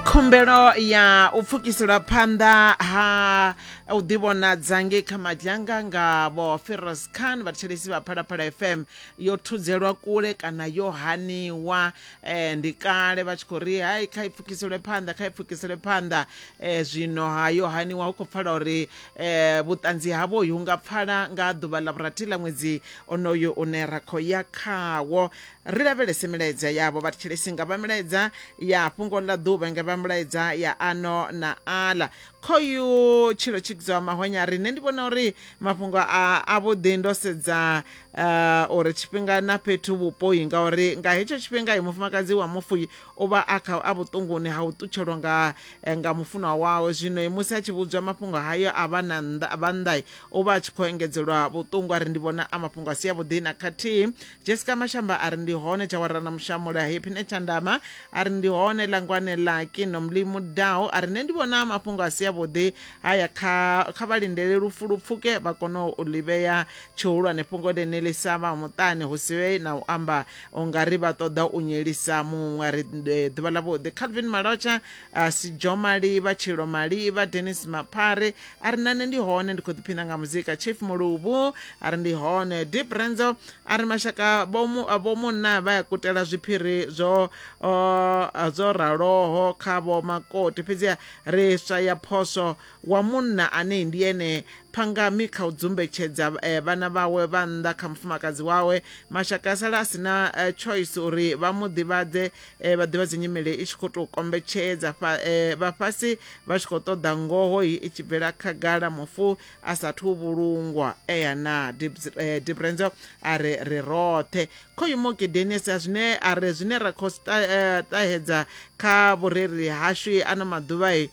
khumbelo ya u pfukiselwa phanḓa ha u ḓivhonadza ngei kha madzhanga nga vho feros khan vhathetshelesi vha phalaphala fm yo thudzelwa kule kana yo haniwa um ndi kale vha tshi khou ri hai kha i pfukiselwe phanḓa kha i pfukiselwe phanḓa um zwino ha yo haniwa hu khou pfala uri um vhuṱanzi havho hu nga pfala nga ḓuvha ḽa vhurathi ḽa ṅwedzi onoyo une ra khou ya khawo Ri lavhelese milaedza yavho vha thetshelesi nga vha milaedza ya fhungo ḽa ḓuvha nga vha milaedza ya ano na aḽa. Khoyu tshilo tshikidzaho mahonya ri nṋe ndi vhona uri mafhungo a a vhuḓi ndo sedza uh, uri tshifhinga na fhethu vhupoi ngauri nga hetsho tshifhinga mufumakadzi wa mufuyi u vha a kha a vhuṱunguni ha u ṱutshelwa nga eh, nga mufunwa wawe zwino musi a tshi vhudzwa mafhungo hayo a vha na vha nnḓa u vha a tshi khou engedzelwa vhuṱungu a ri ndi vhona a mafhungo a si a vhuḓi na khathihi jessica mashamba a ri ndi hone tshawara na mushamula happine tshandama a ri ndi hone langwane laki nomlimu dao a ri nṋe ndi vhona mafhungo a si avhuḓi haya kha kha vha lindele lufu lu pfuke vha kone u ḽi vhea tshihulwane fhungo ḽene ḽi sa vha muṱani hu si vhe na u amba u nga ri vha ṱoḓa u nyelisa muṅwe a ri eh, ḓuvha ḽavhuḓi calvin malotsha a si jo maliva tshilo maliva denis maphare a ri nane ndi hone ndi khou ḓiphina nga muzika chief muluvhu a ri ndi hone deep renzo a ri mashaka vhomunna vha ya kutela zwiphiri zwo zwo raloho kha vho makoti fhedziha ri swa ya phoso wa munna ane ndi ene phangami kha u dzumbetshedza eh, vhana vhawe vha nnḓa kha mufumakadzi wawe mashaka a sala a sina eh, choice uri vha mu ḓivhadze eh, vha ḓivha dzinyimele i tshi khou tou kombetshedza fa- eh, vhafhasi vha tshi khou ṱoḓa ngoho i i tshi bvela khagala mufu a sathu vhulungwa eya na Dibs- eh, dibrenzo a re ri roṱhe khoyu mokedenius a zwine a re zwine ra khou sta- eh, ṱahedza kha vhurereli hashu ano maḓuvha i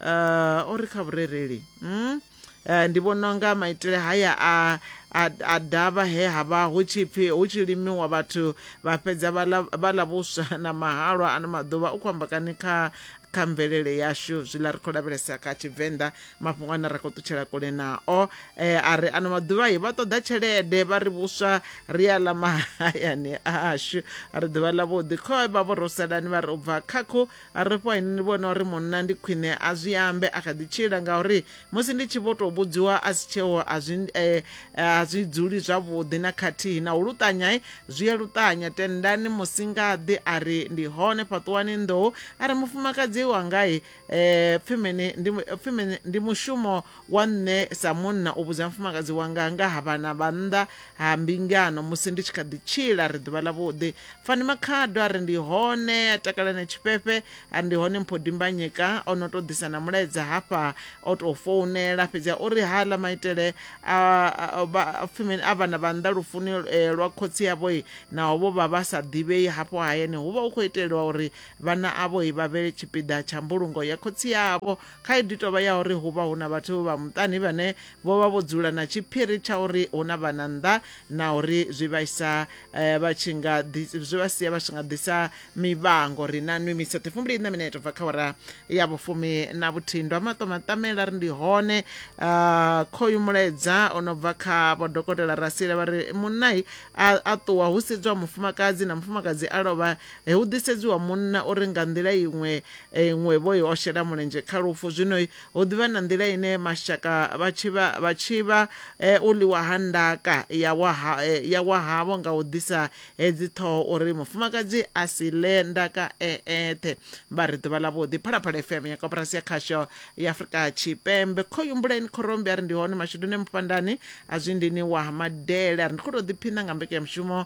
uh, o ri kha vhurereli mm? uh, ndi vhona unga maitele haya a a, a davha he ha vha hu tshi pfi hu tshi limiwa vhathu vha fhedza vha ḽa- vha ḽa vhuswa na mahalwa ano maḓuvha u khou amba kani kha kha mvelele yashu zwiḽa ri khou lavhelesa kha tshivenḓa mafhungo ane ra khou ṱutshela kule nao eh, a ri ano maḓuvha i vha ṱoḓa tshelede vha ri vhuswa ri a ḽa mahayani ashu ri ḓuvha ḽa vhuḓi khoe vha vho rosalani vha ri u bva khakhu a ri fho ni vhona uri munna ndi khwine a zwi ambe a kha ḓi tshila ngauri musi ndi tshi vho tou vhudziwa a si tsheo a zwi eh, a zwi dzuli zwavhuḓi na khathihi na u luṱanya eh, zwi a luṱanya tendani musingaḓi a ri ndi hone fhaṱuwani nḓou a ri mufumakadzi wanga eh, pfimeni ndi, pfimeni ndi mushumo wa nṋe sa munna u vhudza mufumakadzi wanga nga ha vhana vha nnḓa ha mbingano musi ndi tshi kha ḓi tshila ri ḓuvha ḽavhuḓi fani makhado a ri ndi hone a takala na tshifhefhe a ndi hone mpho dimbanyeka o no tou ḓisa na mulaedza hafha o tou founela fhedzi a uri ha ḽa maitele a pfimeni a vhana vha nnḓa lufuni eh, lwa khotsi yavho naho vho vha vha sa ḓivhei hafho hayani hu vha hu khou iteliwa uri vhana avho vha vhe tshipiḓa tsha mbulungo ya khotsi yavho Khaedu i tou vha ya uri hu vha hu na vhathu vha muṱani vhane vho vha vho dzula na tshiphiri tsha uri hu na vhana nnḓa na uri zwi vha isa eh, vha tshi nga ḓi- zwi vha sia vha tshi nga ḓisa mivhango ri na nwi misathe fumbili na mineto bva kha ora ya vhufumi na vhuthihi ndo maṱo maṱamela ri ndi hone Ah, khoyu mulaedza o no bva kha vho dokotela rasile vha ri munai a a ṱuwa hu sedzwa mufumakadzi na mufumakadzi a lovha E, hu ḓisedziwa munna uri nga nḓila iṅwe e, iṅwe vho i o shela mulenzhe kha lufu. Zwino hu ḓivha na nḓila ine mashaka vha tshi vha vha tshi vha e, u ḽiwa ha ndaka ya wa ha e, ya wa havho nga u ḓisa hedzi ṱhoho uri mufumakadzi a si ḽe ndaka e eṱhe. Vha ri ḓuvha ḽavhuḓi. Phalaphala FM ya koporasi ya khasho ya Afrika Tshipembe. Khoyumbuleni Khorombi ari ndi hone mashuduni mupandani a zwindini wa Madele ari ndi kho to ḓiphina nga mbekanyamushumo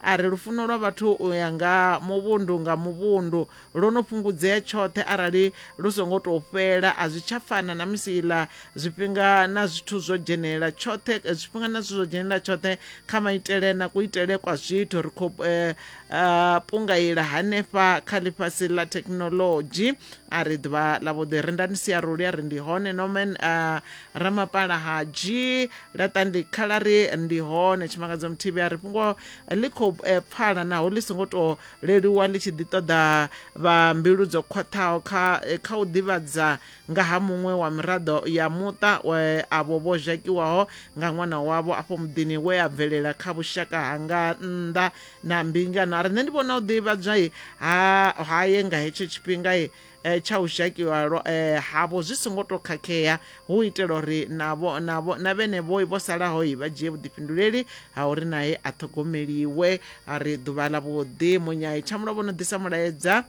A ri, Lufuno lwa vhathu u ya nga muvhundu nga muvhundu lwo no fhungudzea tshoṱhe arali lu songo tou fhela. A zwi tsha fana na musi iḽa zwifhinga na zwithu zwo dzhenelela tshoṱhe, zwifhinga na zwithu zwo dzhenelela tshoṱhe kha maitele na kuitele kwa zwithu. Ri khou pungaila hanefha kha ḽifhasi ḽa thekhinolodzhi. A ri, Ḓuvha ḽavhuḓi, rindani siaru ḽi a ri, Ndi hone, Norman. ramapala ha dzhii laṱa ndi khala ri ndi hone tshimangadzo muthibi a ri fhungo ḽi khou eh, pfala naho ḽi songo tou leluwa ḽi tshi ḓi ṱoḓa vha mbilu dzo khwaṱhaho kha eh, kha u ḓivhadza nga ha muṅwe wa miraḓo ya muṱa we avho vho zhakiwaho nga ṅwana wavho afho muḓini we a bvelela kha vhushaka hanga nnḓa na mbingano a ri nṋe ndi vhona u ḓivhadzwa haye nga hetsho tshifhinga eh, tsha u zhakiwa lwa- eh, havho zwi songo tou khakhea hu u itela uri navho navho na vhenevhoi vho salahoi vha dzhie vhuḓifhinduleli ha uri nae a ṱhogomeliwe a ri ḓuvha ḽa vhuḓi munyai tshamulovho no ḓisa mulaedza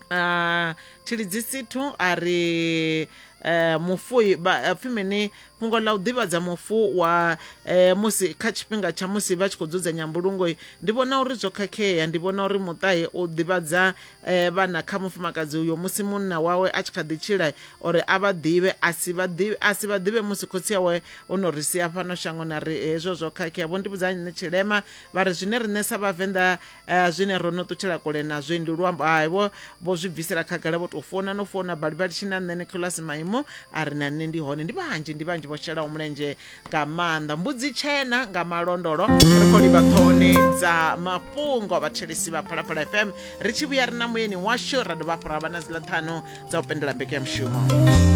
Ah, tshilidzisithu a ri eh, mufu i- ba- eh, pfi mini fhungo ḽa u ḓivhadza mufu wa eh, musi kha tshifhinga tsha musi vha tshi khou dzudzanya mbulungo i, ndi vhona uri zwo khakhea ndi vhona uri muṱahe u ḓivhadza eh, vhana kha mufumakadzi uyo musi munna wawe a tshi kha ḓi tshila uri a vha ḓivhe a si vha ḓivhe a si vha ḓivhe musi khotsi awe o no ri sia fhano shangoni a ri hezwo zwo khakhea vho ndi vhudza nṋe tshilema vha ri zwine riṋe sa vhavenḓa eh, zwine ro no ṱutshela kule nazwo ndi luambo hai vho vho zwi bvisela khagala vho tou founa no founa balivali tshi na nṋe nicolas maimo a ri na nṋe ndi hone ndi vhanzhi ndi vhanzhi vho shelaho mulenzhe nga maanḓa mbudzi tshena nga malondolo ri khou livha ṱhohoni dza mafhungo vhathelisi vha phalaphala fm ri tshi vhuya ri na muyeni washu ra dovha hafhu ra vha na dziḽa ṱhanu dza u pendola mbekanyamushumo